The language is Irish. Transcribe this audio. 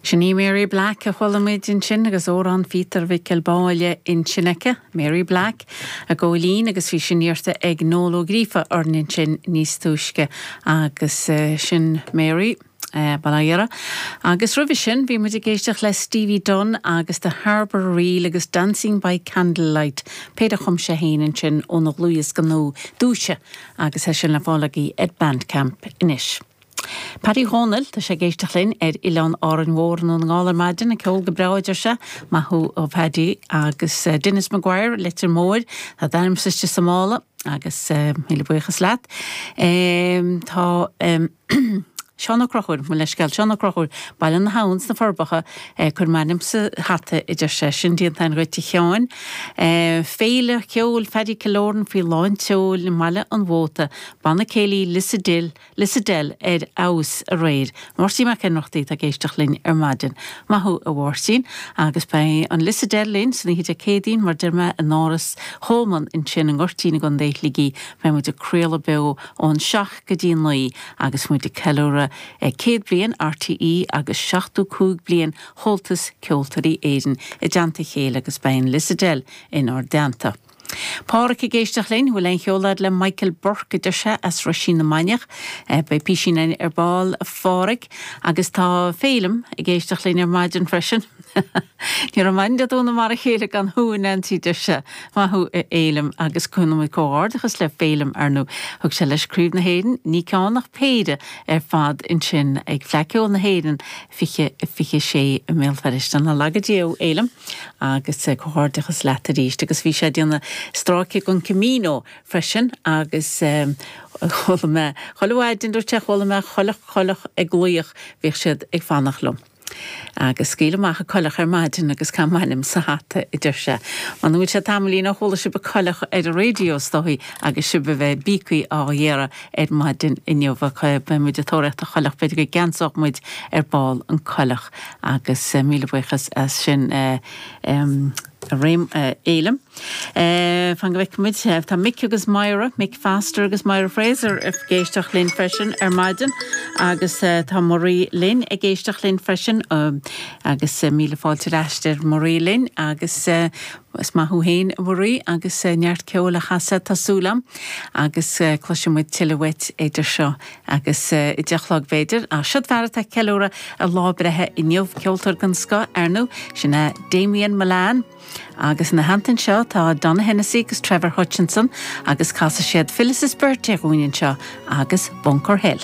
Sin í Mary Black a chuala muid ansin agus Amhrán Phíotair Mhicil Báille ansin aici, Mary Black, a góilín agus bhí sin iarrta ag Noel Ó Gríofa orainn ansin níos túisce agus sin Mary, bail ó Dhia uirthi. Agus roimhe sin bhí muid ag éisteacht le Stevie Dunne agus The Harbour Reel agus Dancing by Candlelight, péire a chum sé fhéin ansin óna dhlúthdhiosca nua, Dúiche agus tá sin le fáil agaibh ar Bandcamp anois. Paddy Dhónaill, tá sé ag éisteacht linn ar Oileán Árainn Mhór i nDún na nGall ar maidin, an ceol go breá a deir sé, maith thú a Phaddy. Agus Denis McGuire, Leitir Móir, tá d'ainmsa istigh sa mála agus míle buíochas leat. Tá Seán Ó Conchúir, mo leithscéal, Seán Ó Conchúir, Baile na hAbhann sna Forbacha, cuir m'ainm sa hata a deir sé, sin déanta a'inn dhuit a Sheáin. Féile cheoil Phaddy Killoran faoi lán tseoil i mBaile an Mhóta, Banna Céilí Lissadell, Lissadell ar fheabhas aréir. Máirtín Mac Ionnrachtaigh atá ag éisteacht linn ar maidin. Maith thú, a Mháirtín. Agus beidh an Lissadell linn san oíche Dé Céadaoin, mar deir mé, in Áras Choleman ansin i nGoirtín i gContae Shligigh. Beidh muid ag craoladh beo ón seacht go dtí naoi agus muid ag ceiliúradh céad bliain RTÉ agus seachtó cúig bliain Chomhaltas Ceoltóirí Éireann i dteannta a chéile agus beidh an Lissadell inár dteannta. Pádraic ag éisteacht linn, bhfuil aon cheol a'd le Michael Burke, a deir sé, as Roisín na Mainiach. Eh, beidh písín a'inn ar ball, a Phádraic, agus tá Féilim ag éisteacht linn ar maidin freisin. Ní raibh maidin Dé Domhnaigh mar a chéile gan thú, a Neansaí, deir sé. Maith thú, a Fhéilim, agus gabhann muid comhghairdeachas le Féilim ar ndó thug sé leis Craobh na hÉireann, ní ceann ach péire ar fad ansin ag Fleadh Cheoil na hÉireann 2026 i mBéal Feirste. Ná laga Dia thú, Fhéilim, agus comhghairdeachas leat arís. Agus bhí sé ag déanamh stráice dhon Camino freisin agus chuala mé chuile mhaidin, dúirt sé, chuala mé coileach, coileach ag glaoch, bhíodh siad ag fanacht liom. Agus scaoil amach an coileach ar maidin agus caith m'ainm sa hata, a deir sé. M'anam go bhfuil sé tamaillín ó chuala sibh coileach ar an raidió, is dóigh, agus sibh a bheith i bpíocaí á iarraidh, ar maidin inniu. Beidh muid ag tóraíocht an choileach, b'fhéidir go gceansódh muid ar ball an coileach agus míle buíochas as sin a Fhéilim. Fan go bhfeicfidh muid, tá Mick agus Moyra, Mick Foster agus Moyra Fraser ag éisteacht linn freisin ar maidin agus tá Marie linn ag éisteacht linn freisin agus míle fáilte ar ais ar Marie linn agus. Bhuel, is maith thú fhéin, a Mharie, agus neart ceoil á chasadh, tá súil agam, agus cloisfidh muid tuilleadh uait idir seo agus a deich a chlog, b'fhéidir, ach siod fear atá ag ceiliúradh a lá breithe inniu, ceoltóir den scoth, ar ndú, sin é Damien Mullane, agus ina theannta anseo, tá Donogh Hennessy agus Trevor Hutchinson, agus casfaidh siad Phyllis's Birthday dhúinn anseo, agus Bunker Hill.